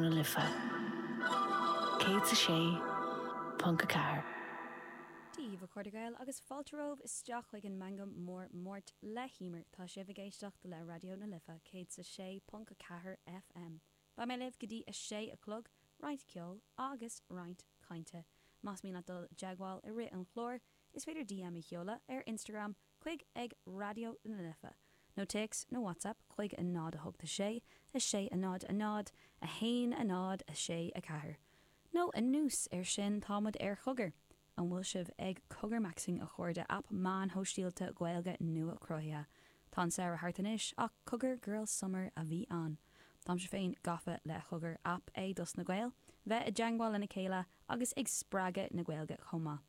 Life, 106.4. Daoibh a chairde Gael agus fáilte romhaibh isteach chuig an Meangadh Mór Máirt le hEimear. Tá sibh ag éisteacht le Raidió na Life 106.4 FM. Beidh mé libh go dtí a sé a chlog, roinnt ceoil agus roinnt cainte. Más mian libh dul i dteagmháil i rith an chláir, is féidir DM a sheoladh ar Instagram chuig ag Raidió na Life nó téacs nó WhatsApp chuig a 0 8 6 6 a 0 a 0 a 1 a 0 6 4 nó anuas ar sin táimid ar Chogar An bhfuil sibh ag cogarmaxing a chairde aip meán sóisialta Gaeilge nuachruthaithe Tá an samhradh thart anois ach cogar girl summer a bhí ann Táimse féin gafa le cogar aip é dos na Gaeil bheith i dteagmháil lena chéile agus ag spreagadh na Gaeilge chomh maith.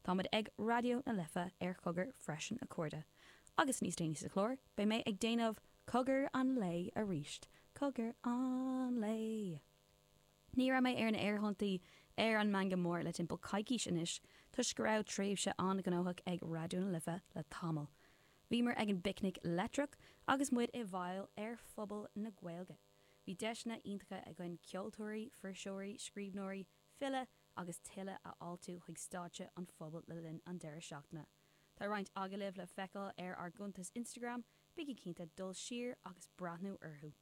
Táimid ag Raidió na Life ar Chogar freisin a chairde, agus níos déanaí sa chlár beidh mé ag déanamh Cogar an Lae arís, Cogar an Lae! Ní raibh mé ar na aerthonnta ar an Meangadh Mór le timpeall coicís anois toisc go raibh tréimhse an-ghnóthach ag Raidió na Life le tamall. Bhíomar ag an bPicnic Leictreach agus muid i bhfeighil ar Phuball na Gaeilge. Bhí deiseanna iontacha againn ceoltóirí, fuirseoirí, scríbhneoirí, filí agus tuilleadh a fháiltiú chuig stáitse an phubaill le linn an deireadh seachtaine. Tá roinnt agallaimh le feiceáil ar ár gcuntas Instagram, bígí cinnte dul siar agus breathnú orthu!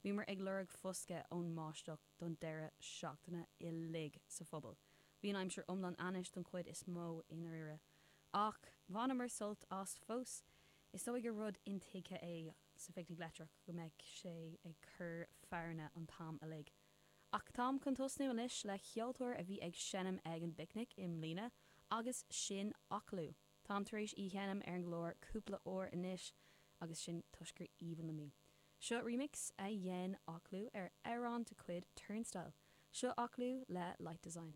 Bhíomar ag lorg foscadh ón mbáisteach don deireadh seachtaine uilig sa phuball. Bhí an aimsir iomlán ainnis don chuid is mó i ndáiríre, ach bhaineamar sult as fós. Is dóigh gur rud intuigthe é sa Phicnic Leictreach go mbeadh sé ag cur fearanna an t-am uilig. Ach táim chun tosnú anois le ceoltóir a bhí ag seinm ag an bPicnic i mbliana agus sin Aclú. Táim tar éis í a sheinm ar an gclár cúpla uair anois agus sin toisc gur aoibhinn liom í. Seo remix a dhein Aclú ar amhrán de chuid Turnstile. Seo Aclú le Light Design.